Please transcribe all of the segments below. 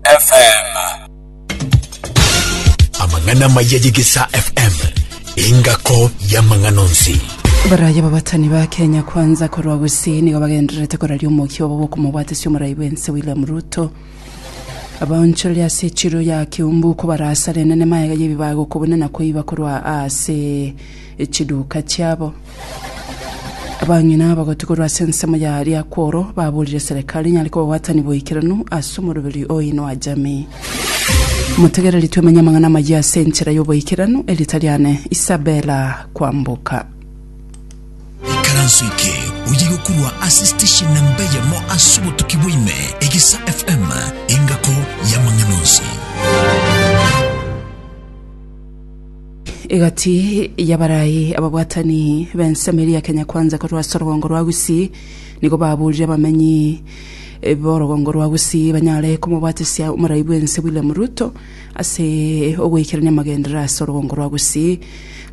FM. Amang'ana maya y'Egesaa FM, engako y'amang'ana onsi. Baraye ababatani ba Kenya Kwanza korwa Gusii nigo bagendererete koraria omokia obo bw'okomobwatesia omorai bw'ense William Ruto. Abaonchoreria ase echiro ya Kiumbu kobarasare enene maega y'ebibago kobuna na koiba korwa ase echiduka chiabo. Abang'ina abagoti korwa ase ensemo ya Liakworo baboorire Serikali nyare kobabwatani boikeranu ase omoroberi oinwa jamii. Motegereri twemenye amang'ana amayia ase enchera y'oboikeranu, erita riane Isabella Kwamboka. Ikaranso eke oye gokurwa ase station namba eyemo ase obotuki bwa ime, Egesa FM, engako y'amang'ana onsi. Egati y'abarai ababwatani b'ensemo eria ya Kenya Kwanza korwa ase orogongo rwa Gusii nigo baburire abamenyi b'orogongo rwa Gusii banyare komobwatesia omorai bw'ense William Ruto ase ogoikerania amagenderera ase orogongo rwa Gusii.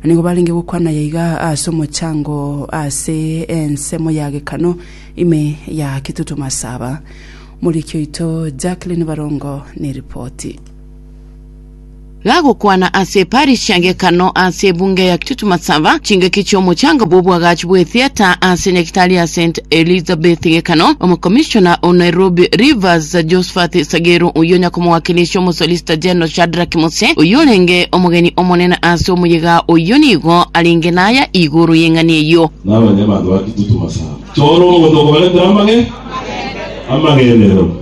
Nigo barenge gokwana aya iga ase omochango ase ensemo ya Gekano ime ya Kitutu Masaba. Moriki oito Jacqueline Barongo neripoti. Gagokwana ase eparisi ya Gekano ase ebunge ya Kitutu Masaba, chingaki chi'omochanga bw'obwagachi bw'etheater ase nyagitari ya St. Elizabeth Gekano, Omokomishona o Nairobi Rivers Josphat Sageru, oyio nyakomwakiresia Omosolicitor General Shadrack Muse, oyorenge omogeni omonene ase omoyega oyio nigo arenge naya igoro y'eng'ani eyio. Namanya abanto ba Kitutu Masaba. Chora omonto okobaretera amage, amagenderero.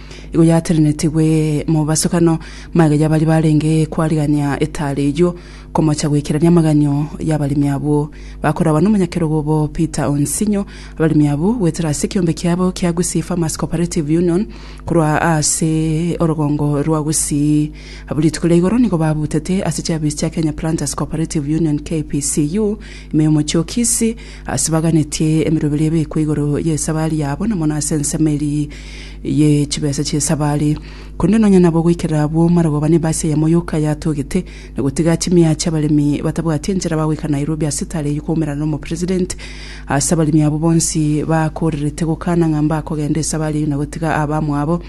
Igo yatenenetigwe mobasokano, magega y'abaria barenge kwarigania etaare eyio, komocha goikerania amaganio y'abaremi abwo. Bakoragwa n'omonyakerogo obo Peter Onsinyo, abaremi abwo goetera ase ekeombe kiabo kia Gusii Farmers Cooperative Union korwa ase orogongo rwa Gusii. Abwo rituko ria igoro nigo babutete ase chiafisi chia Kenya Planters Cooperative Union, KPCU, ime y'omochie o Kisii, Ase baganetie emeroberi ebekwe igoro y'esabari yabo, na mono ase ensemo eria ye chibesa chi'esabari. Korende nonya nabo goikerera abwo marogoba ne basi eyemo yoka yatogete, na gotiga chimiacha abaremi batabwati enchera bagoika Nairobi ase etare eyio koumerana n'omopresident. Ase abaremi abwo bonsi bakorerete gokana ng'a mbakogenda esabari eyio na gotiga abamwabo,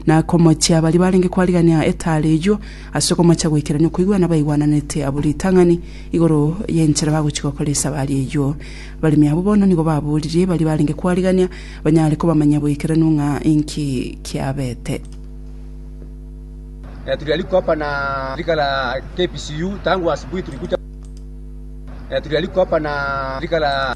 na komochia baria barenge kwarigania etare eyio, Ase okomocha goikerania okoigwana baigwananete abwo ritang'ani igoro y'enchera bagochia gokora esaba aria eyio. Abaremi abwo bono nigo baboririe baria barenge kwarigania banyare kobamanyia boikeranu ng'a inki kiabete. Ee turi ariko hapa na shirika la KPCU tangu asubuhi tulikuja ee turi ariko hapa na shirika la.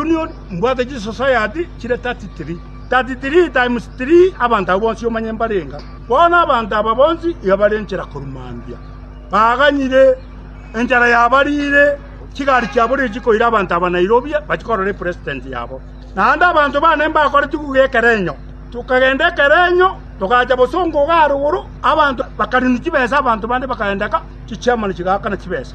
Union, mbwate chisosayati chire 33, 33 times 3 abanto abwo bonsi omanye mbarenga. Bono abanto aba bonsi iga bare enchera korwa mambia, baganyire enchara yabariire, chigari chiabo riria chikoira abanto aba Nairobi bachie korora epresident yabo. Naende abanto baane mbakoretigwe iga ekerenyo, tokagenda ekerenyo, togacha bosongo iga aroro, abanto bakarinu chibesa, abanto bande bakaendeka, chichairman chigaakana chibesa.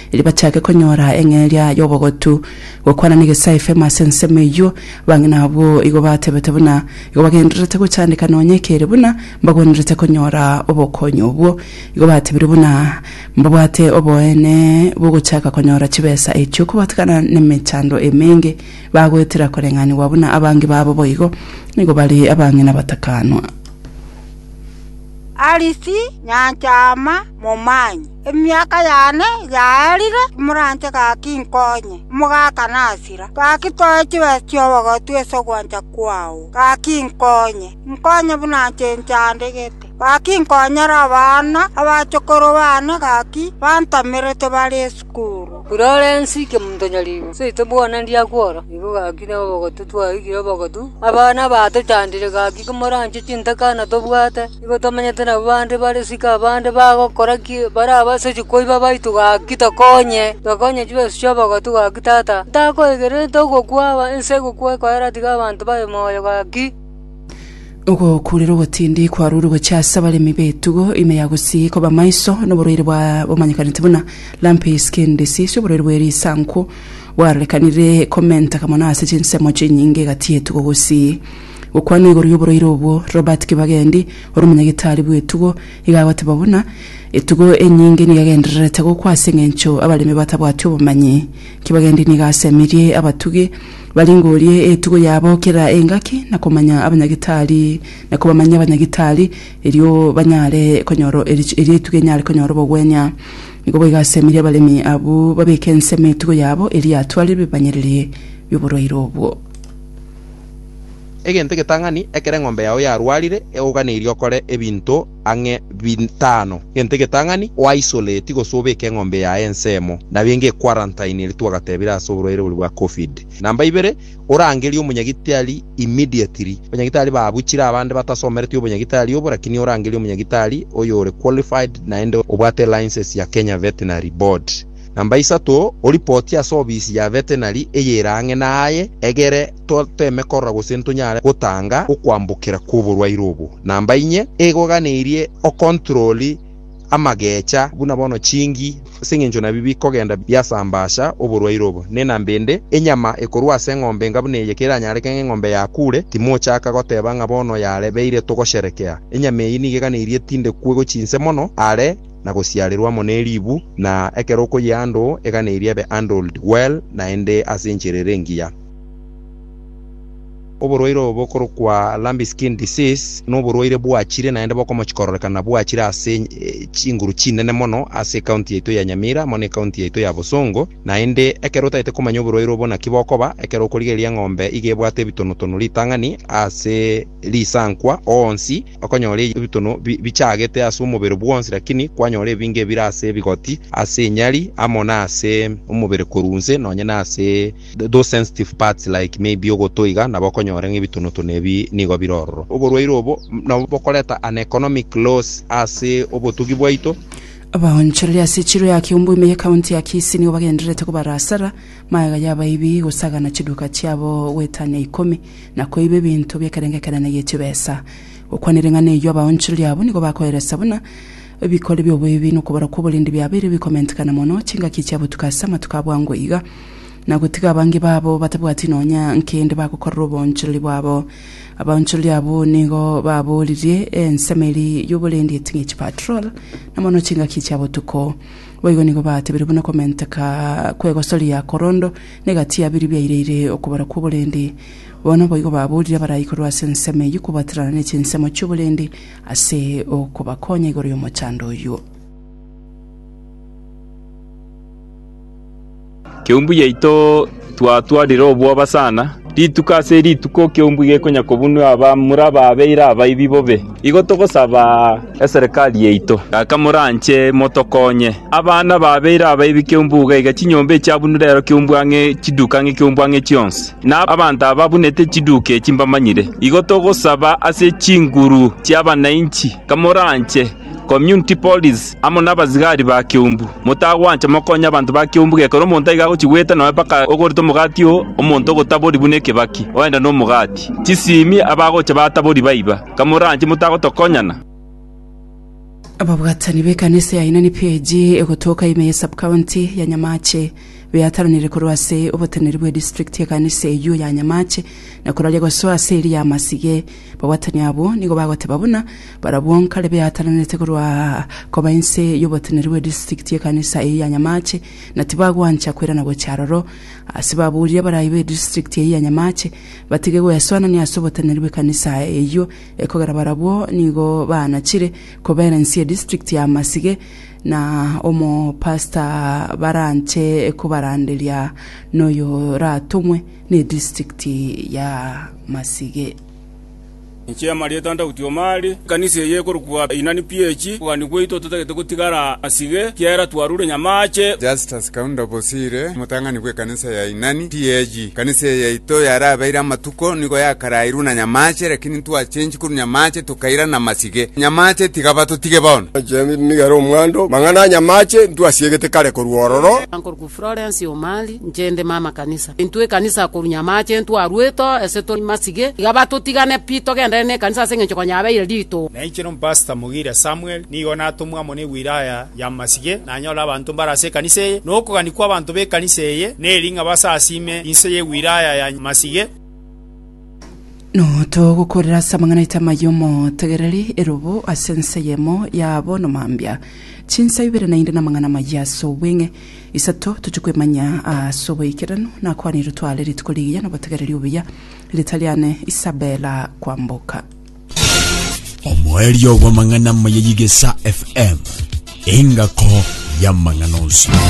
Erio bachake konyora eng'eria y'obogotu gokwana negesae femo ase ensemo eyio, bang'ina abwo igo batebete buna igo bagendererete gochandeka nonya ekere buna mbagwenerete konyora obokonyi obwo. Igo batebire buna mbabwate oboene bw'ogochaka konyora chibesa echio kobatigana nemechando emenge, bagoetera koreng'anigwa buna abange babo boigo nigo bare abang'ina batakanwa. Arisi nyanchama momanyi. Emiaka yane yaarire, moranche gaki inkonye, omogaka nasira. Gaki toe chibesa chi'obogotu ase ogwancha kwao, gaki inkonye, inkonye buna inche nchandegete. Gaki inkonyera abana, abachokoro bane gaki bantamerete bare esukuru. Fulorensi inche montonyaribo, seito bwona ndiakwa oro, nigo gaki na obogotu twaigire obogotu. Abana batochandire gaki komoranche chintaka natobwate. Nigo tomanyete nabwo bande bare isiko abande bagokora ki bare abasacha koiba baito gaki tokonye, tokonye chibeso chi'obogotu gaki tata, ntakwegerete ogokwa aba ense egokwa ekoera tiga abanto baye moyo gaki. Ogokuurera ogotindi kwarure gochia ase abaremi b'etugo ime ya gusii koba maiso noborwaire bwa bomanyekanete buna lumpy skin disease oborwaire bwe risankwo bwarorekanire komenteka mono ase chinsemo chinyinge egati y'etugo gusii Gokwana igoro y'oboroiro obwo, Robert Kibagendi, ore omonyagitari bw'etugo, iga agoteba buna, Etugo enyinge nigo egendererete gokwa ase eng'encho abaremi batabwati obomanyi. Kibagendi nigo asemirie abatugi baringorie etugo yabo kera engaki na komanya abanyagitari na kobamanyia abanyagitari erio banyare konyora erio etugo enyare konyora obogwenia. Nigo boigo asemirie abaremi abwo babeke ensemo etugo yabo erio yatware ebimanyererio bi'oboroiro obwo. Egento egetang'ani, ekero eng'ombe yao yarwarire, egoganeirie okore ebinto ang'e bitano. Egento egetang'ani, o-isolate gose obeke eng'ombe yaye ensemo, nabinge equarantine eria twagatebire ase oborwaire boria bwa Covid. Namba ibere, orangerie omonyagitari immediately. Abanyagitari babuchire abande batasomereti obonyagitari obo, lakini orangerie omonyagitari oyore qualified naende obwate license ya Kenya Veterinary Board. Namba isato, oripotie ase ofisi ya vetenari eyere ang'e naye, egere toteme korora gose ntonyare gotanga okwambokera kw'oborwaire obo. Namba inye, egoiganeirie okontroli amagecha buna bono chingi, ase engencho nabi bikogenda biasambasha oborwaire obo. Ne namba ende, enyama ekorwa ase eng'ombe enga buna eye keranyareke ng'a eng'ombe yakure, timochaka goteba ng'a bono yarebeire togosherekea. Enyama eyio nigo eganeirie tinde kwegwe chinse mono are. na gosiarerwa amo ne ribu, na ekero okoyia ando, egana eria ebe handled well naende ase enchera ere engiya. Oborwaire obo bokorokwa lumpy skin disease noborwaire bwachire naende bokomochi kororekana bwachire ase chinguru chinene mono ase ecounty yaito ya Nyamira amo ne ecounty yaito ya Bosongo, naende ekero otagete komanya oborwaire obo naki bokoba, ekero okorigereria eng'ombe iga ebwate ebitonotono ritang'ani ase risankwa onsi, okonyora ebitono bichagete ase omobere bwonsi, lakini kwanyora ebinge ebire ase ebigoti, ase enyari, amo nase omobere korwa inse, nonye nase those sensitive parts like maybe ogoto iga, nabo okonyora ng'a ebitonotono ebi nigo bire ororo. Oborwaire obo nabwo bokoreta an economic loss ase obotugi bwaito. Abaonchoreri ase echiro ya Kiombo ime y'Ekaunti ya Kisii nigo bagendererete kobarasara magega y'abaibi gosagana chiduka chiabo goetania ikomi. na koiba ebinto bi'ekerengekerane gie chibesa, gokwana ering'ana eyio abaonchoreri abo nigo bakoeresa buna ebikori bi'oboibi na okobara kw'oborindi biabeire bikomentikana mono chingaki chia botuko ase amatuko a bwango iga, na gotiga abange babo batabwati nonya nkende bagokorera oboonchoreri bwabo. Abaonchoreri abwo nigo baboririe ensemo eria y'oborendi eti ng'echi patrol, na mono chingaki chia botuko. Boigo nigo batebirie buna komenteka kw'egosoria korondo, Negati ya biri biaireire okobara kw'oborendi. Bono boigo baboorire abaraai korwa ase ensemo eyio kobwaterana ne chinsemo chi'oborendi ase okobakonya igoro y'omochando oyio. Keumbu yaito twatwarire obwoba sana. Rituko ase rituko kiombwe gekonyakobunua aba mura babeire abaibi bobe. Igo togosaba eserekari yaito, gaka moranche motokonye. Abana babeire abaibi kiombwe iga iga chinyomba echiabunure ero kiombwe ang'e chiduka ang'e kiombwe ang'e chionsi. Na abanto aba babunete chiduka echi mbamanyire. Igo togosaba ase chinguru chi'abananchi, kamoranche. Community Police, amo nabasigari ba keumbu. Motagwancha mokonye abanto ba keumbu gekero omonto aiga agochia goeta noe mpaka ogorete omogati oo, omonto ogotabori buna ekebaki, oende nomogati. Chisimi abagocha batabori baiba. Kamoranche motagotokonyana. Ababwatani b'ekanisa ya Ainani PAG egotoka ime ye Sub-county ya Nyamache beataranire korwa ase oboteneri bwe district y'ekanisa eyio ya Nyamache na koraria gosoa ase eria y'amasige. Babwatani abwo nigo bagoteba buna Barabwo nkare beataranete korwa aa koba inse y'oboteneri bwe district y'ekanisa eyio ya Nyamache, na tibagwancha kwerana gochia aroro. Ase baburia abarai be district eyio ya Nyamache batige gwesoanania ase oboteneri bw'ekanisa eyio, ekogera barabwo nigo baanachire kobera inse ye district ya Masige na omopastor baranche kobaranderia noyoratomwe ne district ya Masige. Inche Marieta ntagutio Mari, ekanisa eye ekorokwa Inani PH, okogania gwaito totagete gotigara asige, ekiagera twarure nyamaache. Justus Kaunda Bosire, omotang'ani bw'ekanisa ya Inani PH, Ekanisa eye yaito yarabeire amatuko nigo yakarairwe na nyamaache, lakini ntwachengi korwa nyamaache tokairana amasige. Nyamaache tiga batotige bono. James nigo ere omwando. Mang'ana a nyamaache ntwasiegete kare korwa ororo. Florence Omari, Inche inde mama kanisa. Intwe ekanisa korunya amache intwe arweto ase tore masige, iga batotigane pi togendane nekanisa ase engencho konya yabeire rituko. Na inche nompastor Mugire Samuel nigo natomwa amo newiraya ya masige nanyore abanto mbare ase ekanisa eye, na okogania kwabanto bekanisa eye neri ng'a basasime inse yewiraya ya masige. Notogokorera ase amang'ana aito amaya omotegereri, erobo ase ense eyemo yabo nomambia. Chinsa ibere naende namang'ana amaya ase obweng'e. Isato tochia kwemanya ase oboikeranu, nakwanire tware rituko rigiya nobotegereri obuya. Rita riane Isabella Kwamboka. omoerio bw'amang'ana amaya y'Igesa FM, engako y'amang'ana onsi.